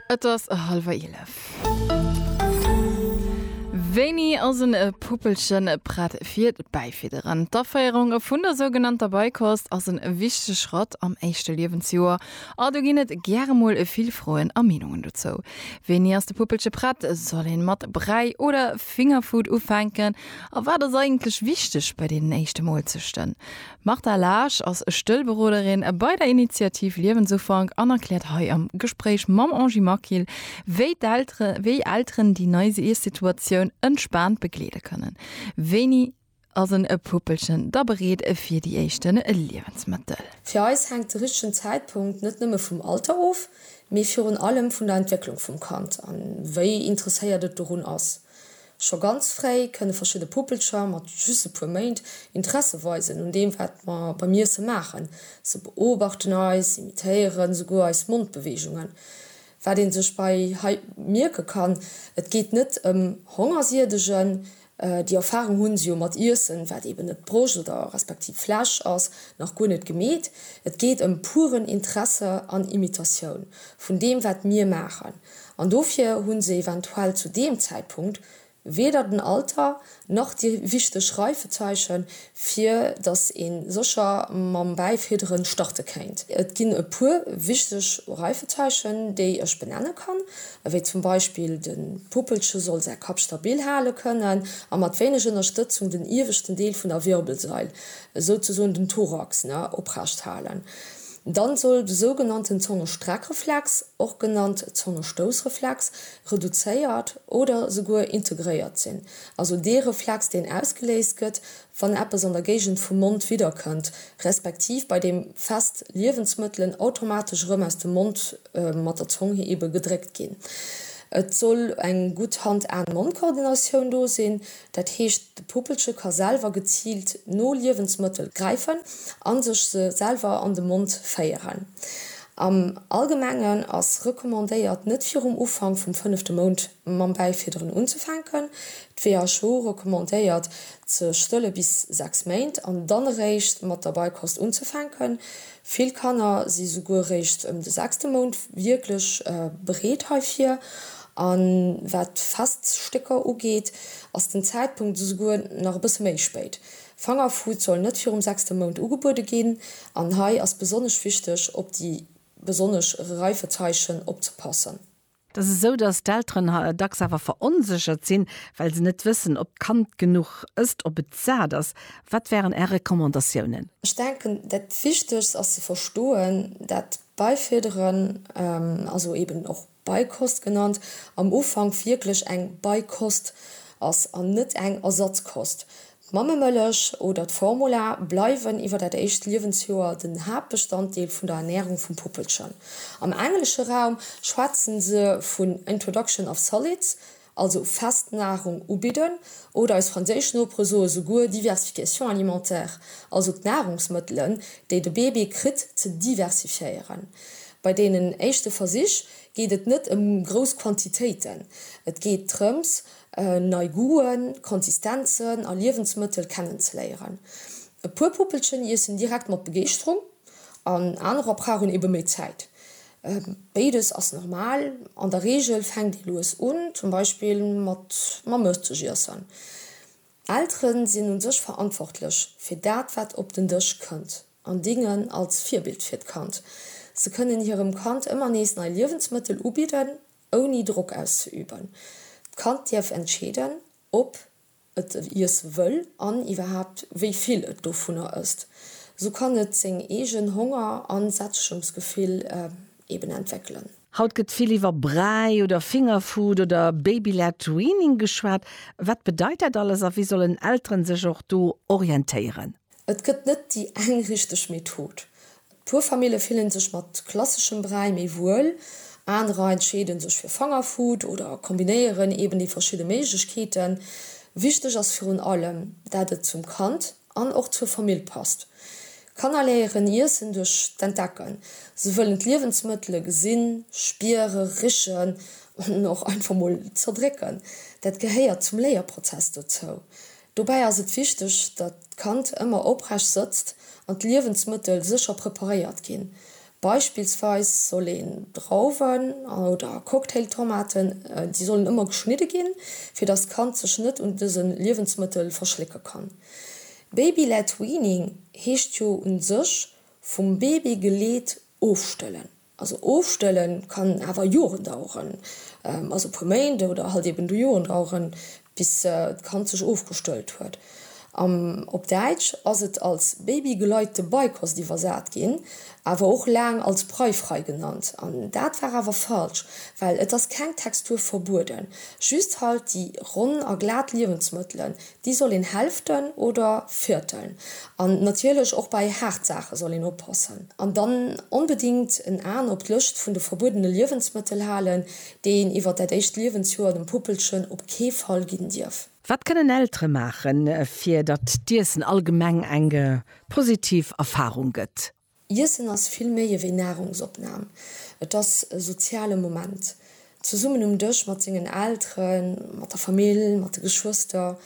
Et ass hallwer eelef. Wéini ass en Puppelchen prett fir d'Bäifidderen? D'Aféierung vun der sougenannter Beikost ass en wichtege Schratt am éischte Liewensjoer a do ginn et gäre mol vill Froen a Meenungen dozou. Wéini ass de Puppelche prett? Soll een mat Bräi oder Fingerfood ufänken? A wat ass eigentlech wichteg bei deenen éischte Molzechten? D'Martha Laasch ass Stëllberoderin bei der Initiativ Liewensufank an erkläert hei am Gespréich mam Angie Maquil, wéi d'Eltere wéi Elteren déi nei Iessituatioun entspaant begleede kënnen. Wéini ass en Puppelchen da bereet fir déi éischte Liewensmëttel? Fir eis hänkt de richtegen Zäitpunkt net nëmme vum Alter of, mee virun allem vun der Entwécklung vum Kand an wéi interesséiert et dorun ass. Scho ganz fréi kënne verschidde Puppelcher mat just e puer Méint Interesse weisen un deem, wat mer beim Iesse maachen. Se beobachten eis, imitéieren esouguer eis Mondbeweegungen. Wat ee sech bei hei mierke kann, Et geet net ëm Hongersiedegen. Déi Erfarung hu se jo mat Iessen, wat eeben net Broscht oder respektiv Flesch ass, nach guer net gemeet. Et geet ëm puren Interesse an Imitatioun vun deem, wat mir maachen. An dofir hu se eventuell zu deem Zäitpunkt weder den Alter nach déi richteg Reifezeiche fir datt ee sécher mam Bäifidderen starte kéint. Et ginn e puer wichteg Reifezeichen, déi ech benenne kann, ewéi zum Beispill de Puppelche soll säi Kapp stabil hale kënnen a mat wéineg Ënnerstëtzung den ieweschten Deel vun der Wirbelsail, souzesoen den Thorax, oprecht halen. Dann soll de sougenannten Zongestreckreflex och genannt Zongestoussreflex, reduzéiert oder souguer integréiert sinn, also dee Reflex, deen ausgeléist gëtt, wann eppes an der Géigend vum Mond widderkënnt, respektiv bei deem fest Liewensmëttelen automatesch erëm aus dem Mond mat der Zong ebe gedréckt ginn. Et soll eng gutt Hand-Aen-Mond-Koordinatioun do sinn, Dat heescht, de Puppelche ka selwer geziilt no Liewensmëttel gräifen a sech se selwer an de Mond féieren. Am Allgemengen ass recommandéiert, net virum Ufank vum fënnefte Mount mam Bäifidderen unzefänken. D'WHO recommandéiert, ze stëlle bis 6 Méint an dann eréischt mat der Beikost unzefänken. Vill Kanner si souguer réischt ëm de sechste Mount wierklech bereet heifir. A wat d'Feststécker ugeet, ass den Zäitpunkt esouguer nach e bësse méi spéit. Fangerfood soll net virum sechste Mount ugebuede ginn an hei ass besonnesch wichteg, op déi besonnesch Reifezeichen opzepassen. Et ass esou, dass d'Elteren dacks awer veronséchert sinn, well se net wëssen, ob d'Kand genuch ësst, ob et sat ass. Wat wären Är Recommandatiounen? Ech denken, dat Wichtegst ass ze verstoen, dat Beifidderen, also eben och Beikost genannt, am Ufank wierklech eng Beikost ass an net eng Ersatzkost. D'Mammemëllech oder d'Formula bleiwen iwwer dat éischt Liewensjoer den Haaptbestanddeel vun der Ernärung vum Puppelchen. Am englesche Raum schwätze se vun introduction of solids, also fest Nahrung ubidden, oder eis franséisch Nopere soe souguer diversification alimentaire, also d'Nahrungsmëttelen, déi de Bébé kritt, ze diversifiéieren. Bei deenen éischte Versich geet et net ëm grouss Quantitéiten, et geet drëms, nei Goûten, Konsistenzen a Liewensmëttel kennenzeléieren. E puer Puppelchen iessen direkt mat Begeeschterung an anerer brauchen ebe méi Zäit. Béides ass normal. An der Reegel fänkt ee lues un, zum Beispill mat mam Mëttgiessen. Eltere sinn u sech verantwortlech fir dat, wat op den Dësch kënnt an dingen als Virbild fir d'Kand. Se kënnen hirem Kand ëmmer nees nei Liewensmëttel ubidden Ouni Drock auszeüben. D'Kand dierf entscheeden, ob et iesse wëll an iwwerhaapt wéi vill et dovunner ësst. Sou kann et seng eegen Honger a Sättegungsgefill eben entwéckelen. Haut gëtt vill iwwer Bräi oder Fingerfood oder Baby-led Weaning geschwat. Wat bedeit dat alles a wéi sollen Elteren sech och do orientéieren? Et gëtt net déi eng richteg Method. Puer Famille fillen sech mat klasseschem Bräi méi wuel, anerer entscheeden sech fir Fangerfood oder kombinéieren eben déi verschidde Méiglechkeeten. Wichteg ass virun allem, dat et zum Kand an och zur Famill passt. Kanner léieren Iessen duerch d'Entdecken. Se wëllen d'Liewensmëttele gesinn, spiere, richen an och einfach mol zerdrécken. Dat gehéiert zum Léierprozess dozou. Dobäi ass et wichteg, datt d'Kand ëmmer oprecht sëtzt an d'Liewensmëttel sécher preparéiert ginn. Beispillsweis soll een Drauwen oder Cocktailtomaten, déi sollen ëmmer geschnidde ginn, fir datt d'Kand sech net un dëse Liewensmëttel verschlécke kann. Baby-led weaning heescht jo u sech vum Baby geleet ofstëllen. Also ofstëlle kann awer Joren daueren, also e puer Méint oder halt eben du Joren daueren, bis d'Kand sech ofgestëllt huet. Am op Däitsch ass et als babygeleitete Beikost iwwersat ginn, awer och laang als breifrei genannt. An dat war awer falsch, well et ass keng Textur verbueden, just halt déi ronn a glat Liewensmëttelen, Déi soll een hälften oder vierteln. An natierlech och bei haart Saache soll een oppassen. An dann onbedingt en Aen op d'Lëscht vun de verbuedene Liewensmëttel halen, déi een iwwert dat éischt Liewensjoer dem Puppelchen op kee Fall ginn dierf. Wat kënnen Eltere maachen, fir datt d'Iessen allgemeng eng positiv Erfarung gëtt? Iessen ass vill méi ewéi Nahrungsopnahm. Et ass e soziale Moment, zesummen um Dësch mat sengen Elteren, mat der Famill, mat de Geschwëster.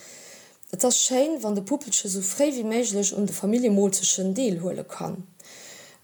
Et ass schéin, wann de Puppelche sou fréi wéi méiglech un de Familljemoolzechen deelhuele kann,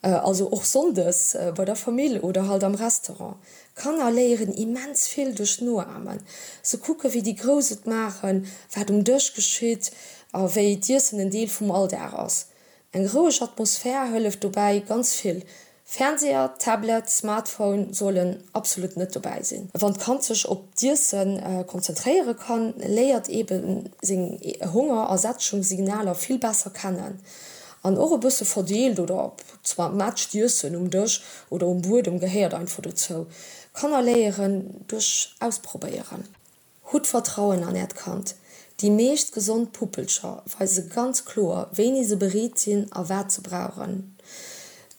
also och sonndes bei der Famill oder halt am Restaurant. Kanner léieren immens vill duerch Noamen. Se kucken, wéi déi Grouss et maachen, wat um Dësch geschitt a wéi d'Iessen en Deel vum Alldag ass. Eng roueg Atmosphär hëlleft dobäi ganz vill. Fernseher, Tablet, Smartphone sollen absolut net dobäi sinn. Wann d'Kand sech op d'Iesse konzentréiere kann, léiert ebe seng Honger a Sättegungssignaler vill besser kennen. An och e bësse verdeelt oder zermatscht Iessen um Dësch oder um Buedem gehéiert einfach dozou. Kanner léieren duerch Ausprobéieren. Hutt Vertrauen an äert Kand. Déi meescht gesond Puppelcher weise ganz kloer, wéini se bereet sinn a wat se brauchen.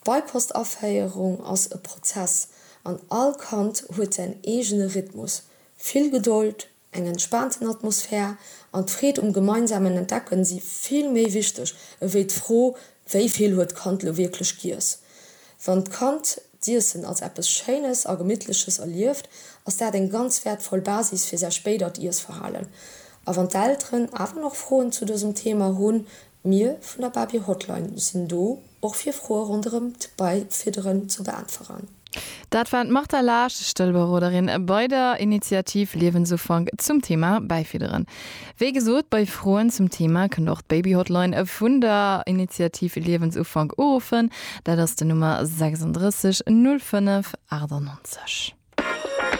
D'Beipost-Aféierung ass e Prozess an all Kand huet säin eegene Rhythmus. Vill Gedold, eng entspaanten Atmosphär an d'Freed um gemeinsamen Entdecken si vill méi wichteg ewéi d'Fro, wéi vill huet d'Kand elo wierklech giess. Wann d'Kand d'Iessen als eppes Schéines a Gemittleches erlieft, ass dat eng ganz wäertvoll Basis fir säi spéidert Iessverhalen. A wann d'Elteren awer nach Froen zu dësem Thema hunn, mir vun der Babie Hotline sinn do och fir Froe ronderëm d'Beifidderen ze beäntweren. Dat war d'Martha Laasch, Stëllberoderin bei der Initiativ Liewensufank zum Thema Bäifidderen. Wéi gesot, bei Froen zum Thema kënnt och d'Baby Hotline vun der Initiativ Liewensufank uruffen. Dat ass den Nummer 36 05 98.